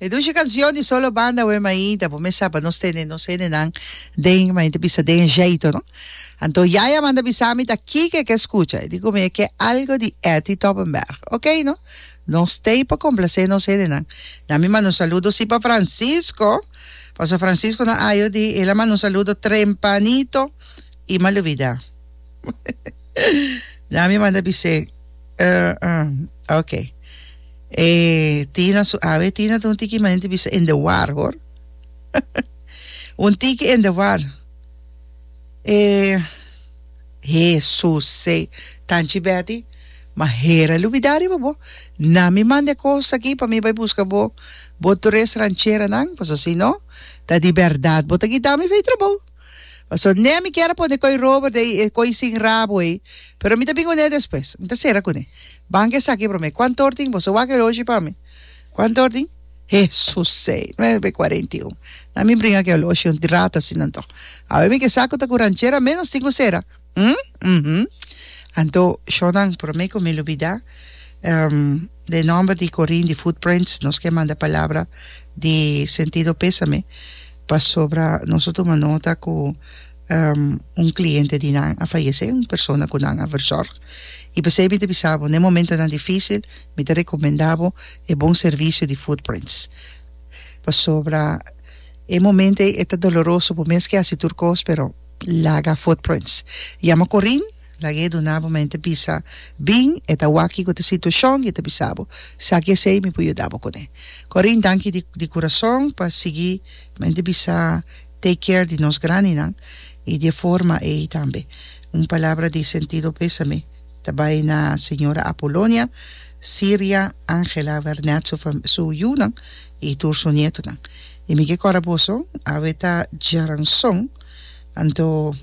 E dushi kancion di solo banda Wee Mayi ta por mesa pa nos tene nos hendenan den, mayi ta bisa den e jeito no. Anto Yaya manda bisa mi ta kiko e ke skucha, e di ku mi e ke algo di Etty Toppenberg. Ok no, nos stay pa komplase nos hendenan. Na mi manda un saludo si pa Francisco, paso Francisco na ayo di el a manda un saludo trempanito i malubida. Dja mi manda bis'é. Uh, uh, ok. E Tina su awe. Tina ta un tiki manen di bisa in the war, hoor. un tiki in the war. E Jesusé. Tanchi Betty, ma hera lubida riba bo. Na mi mande kos aki pa mi bai buska bo, bo tres rancheranan, paso si no, ta di bèrdat bo ta kita mi fei trabou. Pasobra ne mi kier a pone koi rober den e koi sin rabo ei, pero mi ta bin kuné despues. Mi ta sera kuné. Banka esaki promé. Kuantu or tin boso wak eloshi pa mi? Kuantu or tin? Hesus sei! Nuebe kuarenta i un. Na mi bringa ku eloshi, un rata asina anto. Awe mi ke sa ku ta ku ranchera menos tin ku sera. Hm? Uhum. Anto, Shonnan, prome cu mi lubida, ehm, den e nomber di Corin di Footprints, nos ke manda palabra di sentido pesame, pasobra nos a tuma nota cu, ehm, un cliente di nan a fayece, un persona cu nan a verzorg. Y pesey mi ta bisa bo, n'e momentonan dificil, mi ta recomenda bo e bon servicio di Footprints. Pasobra e momento ey e ta doloroso, bo mes ke haci tur cos, pero. Laga footprints. Yama Corin, laga e duna bo mente bisa, Bin, e ta waki cu ta situacion y e ta bisa bo, Saki esey, mi por yuda bo cune. Corin, danki di di curason pa sigui mente bisa take care di nos grandinan y di e forma ey tambe. Un palabra di sentido pesame ta bay na Señora Apolonia, Siria, Angela, Vernet su fam su yunan y tur su nietonan. Y mi ke cora boso, awe ta djaranson. Anto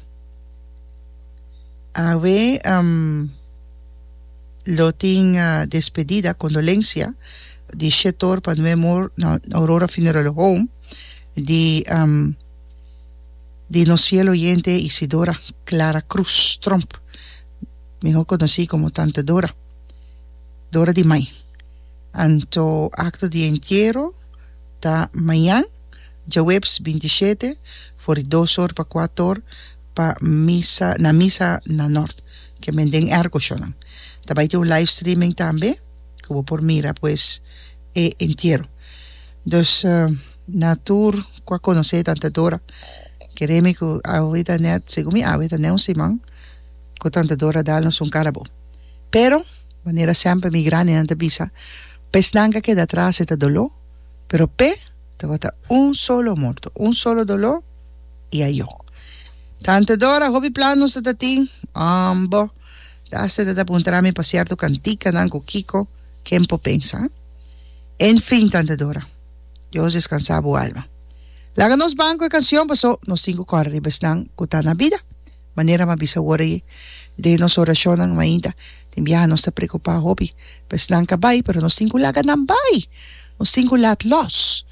awe lo tin despedida, condolencia, di Shetor pa Nue Mor na Aurora Funeral Home di di nos fiel oyente Isidora Clara Cruz Tromp, mihor conoci como Tante Dora, Dora di Mai. Anto acto di entiero ta mañan. Djaweps binti shete for di dos or pa kuat or pa misa na misa na nort ke men den erko shonan. Ta bai tin un live streaming tambe ku bo por mira pues e entiero. Dus na tur ku a konosé tanta Dora keré mi ku awe ta nèt segun mi awe ta nèt un siman ku tanta Dora dal nos un karabo. Pero manera semper mi grandinan ta bisa pa esnan ka keda atras e ta doló. pero p'e tabata un solo morto, un solo doló i a yok. Tante Dora, hopi plan nos ta ta tin, um bo, Dase ta ta puntra mi pa sierto cantikanan cu kico ken por pensa? En fin, Tante Dora, Dios descansa bo alma. Laga nos ban cu e cancion paso nos tin cu cora riba esnan cu ta na bida. Manera m'a bisa wor ei den nos orashonnan, mainta den biaha nos ta preokupá hopi pa esnan ka bai, pero nos tin ku laga nan bai, nos tin ku lat lòs,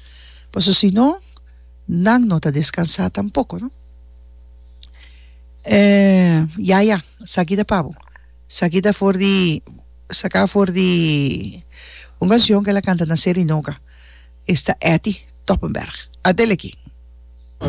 paso si no nan no ta deskansá tampoko. Ya ya, esaki ta pa bo, esaki ta for di saká for di un kanshon ku el a kanta na Serenoga, esta Etty Toppenberg. Adeleki!